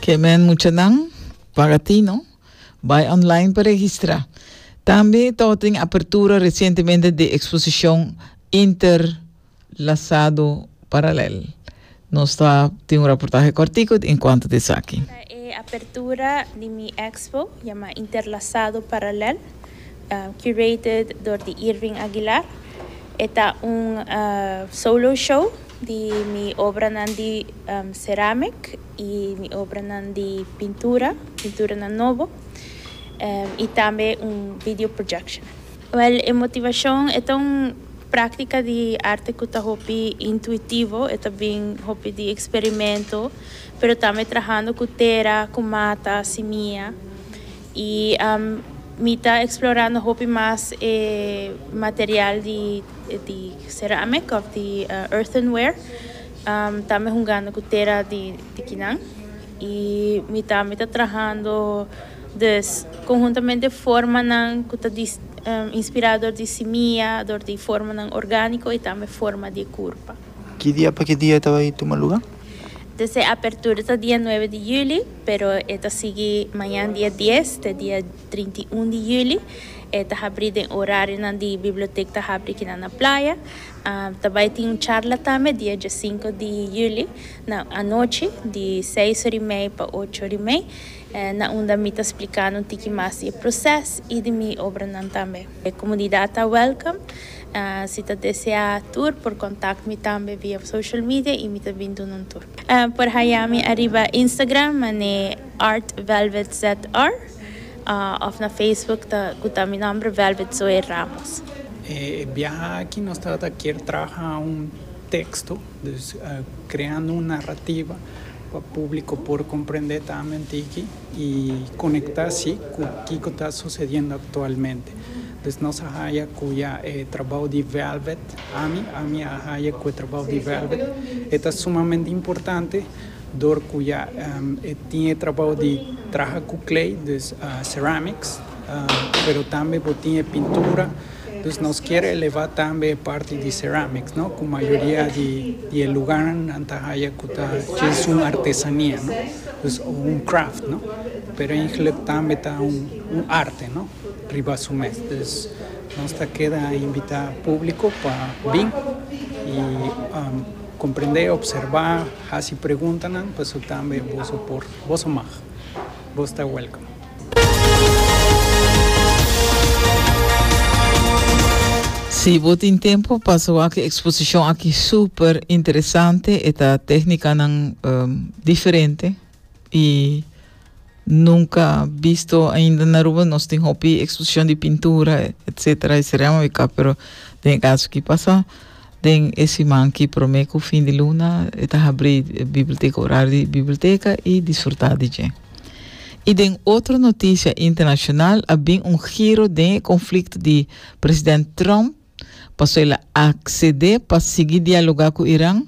Ke men muchanan para ti no. Bai online pa registra. Tambe to tin apertura recientemente de exposición interlazado paralel. Nos ta tin un reportaje cortico en cuanto de esaki. Ta e apertura di mi expo yama Interlazado Paralel, curated door di Irving Aguilar. E ta un solo show. di mi obranan di ceramic y mi obranan di pintura, pinturanan nobo y tambe un video projection. Wel, e motivacion e ta un practica di arte cu ta hopi intuitivo, e ta bin hopi di experimento, pero tambe trahando cu tera, cu mata, simia. Y mi ta explorando hopi mas e material di di ceramic of di earthenware. Ta mi hungando cu tera di kinan y mi ta mi ta trahando dus conhuntamente formanan cu ta di inspira door di simia, door di formanan organico y tambe forma di e curpa. Ki dia pa ki dia e ta bay tuma luga? Te se apertura ta dia nuebe di juli, pero e ta sigui mañan dia dies te dia trinta i un di juli. E ta habri den orarionan di bibliotek ta habri kinan na playa. Um, ta bai tin un charla tambe dia diesinco di juli na anochi, di seis ora i mei pa ocho ora i mei, na unda mi ta splikando un tiki mas di e proces i di mi obranan tambe. E comunidad ta welcome. Si ta desea tur por contact mi tambe via social media y mi ta bin dun'un tur. Por haya mi ariba Instagram man'e artvelvetzr of na Facebook ta cu ta mi nomber Velvet Zoe Ramos. E biaha aki nos ta ta kier traha un texto, dus creando un narrativa pa publico por comprende tambe un tiki. y conecta si cu kico ta sucediendo actualmente. Pues nos a haya cu ya e trabao di Velvet, ami, ami a haya cu e trabao di Velvet, e ta sumamente importante door cu ya e tin e trabao di traha cu clay, dus ceramics. pero tambe bo tin e pintura, dus nos kier eleva tambe e parti di ceramics no, ku mayoria di e lugarnan nan ta haya ku ta kes un artesania no, dus un craft no, pero eigenlijk tambe ta un arte no, riba su mes, dus nos ta keda invita publico pa bin i comprende, observa, hasi preguntanan, pasobra tambe boso por, boso mag, bo ta welcome. Si bo tin tempo pa so aki exposicion aki super interesante e ta técnicanan um, diferente y nunca bisto ainda na Aruba nos tin hopi exposición di pintura etcétera y seremos biká pero den e caso ki pasa Den e siman ki promé ku fin di luna e ta habrí Bibelteka Orario di Bibelteka i disfrutá di dje. I den otro notisia internashonal a bin un giro den e konflikto di president Trump paso el a aksedé pa sigui dialogá ku Iran.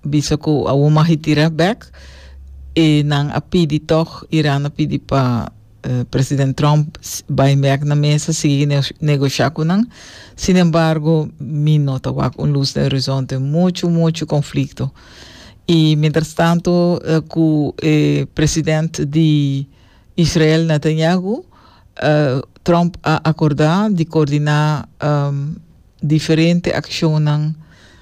Bisa ku awor mag e tira bèk. E nan a pidi tòg, Iran a pidi pa president Trump bai bèk na mesa, sigui negoshá ku nan. Sinembargo, mi no ta wak un lus den orizonte. Muchu, muchu konflikto. I mientras tanto ku e president di Israel Netanyahu, Trump a akordá di koordiná diferente akshonnan.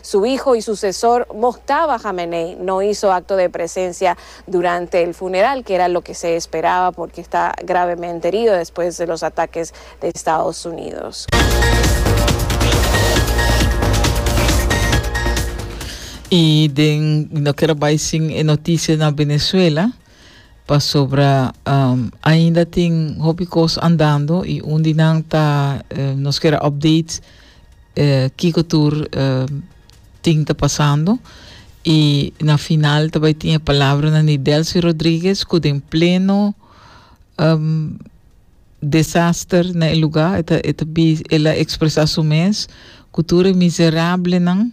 Su hijo y sucesor moctava Jamenei no hizo acto de presencia durante el funeral, que era loke se esperaba porque está gravemente herido despues de los ataques de Estados Unidos. Y den no quiero bai sin e noticia na Venezuela pasobra um, ainda tin hopi cos andando y un di nan ta eh, nos quiero update kiko tur tin ta pasando y na final ta bay tin e palabranan di Delcy Rodriguez cu den pleno desaster na e lugar e ta e ta ela expresa su mes cu tur e miserablenan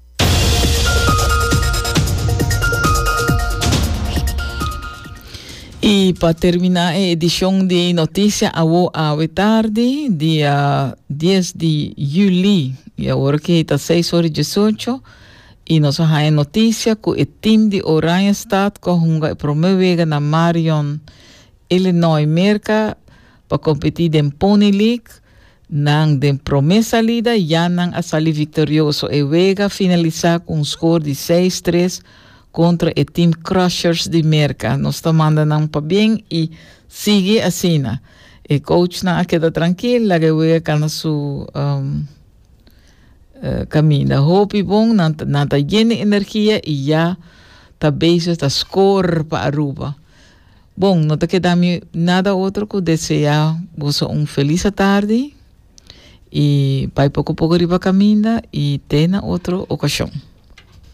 Y pa termina e edicion di noticia awo awe tardi, dia 10 di juli, y awor ki ta 6 ora y 18, y nos a haña noticia cu e team di Oranje Stad cu a hunga e prome wega na Marion, Illinois, Merca, pa kompetí den Pony League, nan den promé salida ya nan a sali viktorioso. E wega finalisá ku un skor di seis tres kontra e Team Crushers di Merka. Nos ta manda nan pabien i sigui asina. E kouchnan a keda trankil, laga e wega kana su kaminda. Hopi bon, nan ta nan ta yen di energia i ya ta bezig ta skor pa Aruba. Bon, no ta keda mi nada otro cu desea boso un feliz atardi y bai poco poco riba caminda y te na otro ocasion.